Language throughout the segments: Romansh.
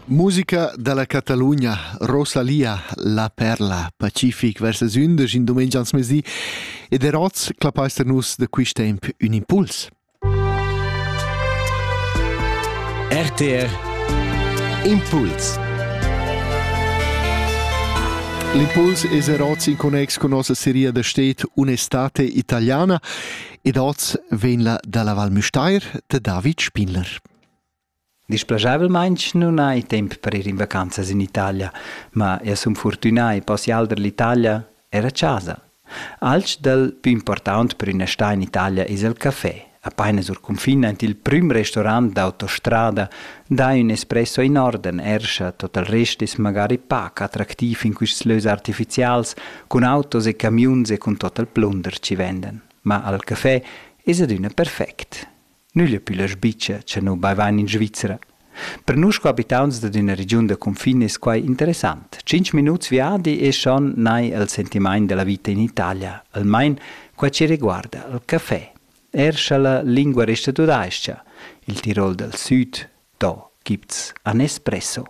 Musica dalla Catalugna, Rosalia, la perla, pacific vers las undisch in dumengia ans mesi ed er oz clapaister nus da quist temp ün impuls. RTR Impuls L'impuls es er oz in connex con nossa seria da stet Un'estate italiana ed oz vegn la dalla Val Müstair de David Spinler. Displaschavelmaing nun hai temp per ir in vacanzas in Italia, ma eu sun fortünà e possial der l'Italia er a casa. Alch dal più important per üna sta in Italia es il café. Apaina sur confin aint il prüm restaurant d'autostrada dà ün espresso in orden, erscha tot il rest es magari pac attractiv in quists lös artificials, cun autos e camiuns e cun tot il plunder chi vendan. Ma al café es adüna perfect. Nügl pü la sbicia cha nu baivan in Svizzera. Per nus qua abitauns dad üna regiun da cunfin es quai interessant. Tschinch minuts viadi es schon nai al sentimaint da la vita in Italia, almain qua chi riguarda il café. Er scha la lingua resta tudais-cha, il Tirol dal Süd, do, gibt's a Nespresso.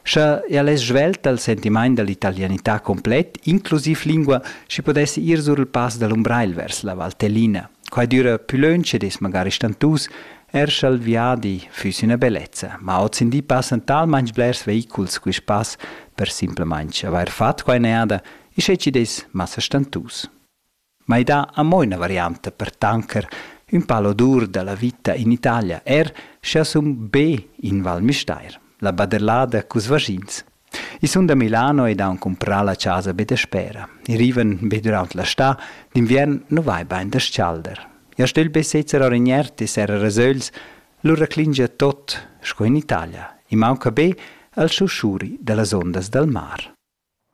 Scha eir less svelt dal sentimaint da l'italianità complet, inclusiv lingua, schi pudess ir sur il pass da l'Umbrail vers la Val Tellina. Quai düra pü lönch ed es magari stantus, eir scha'l viadi füss üna bellezza, ma hozindi passan talmainch blers veiculs quist pass per simplamaing avair fat quai neada e sche chi'd es massa stantus. ma i dà amo üna varianta per tanker ün pal odur da la vita in Italia, er sch'eu sun be in Val Müstair, la baderlada culs vaschins. I sun da Milano ed haun cumprà la chasa be daspera. I rivan be dürant la stà, d'inviern nu vai bain da s-chalder. Ja stögl be sezzer our in iert e serrer rasögls, lura clingia tot sco in Italia. I maunca be al schuschuri da las ondas dal mar.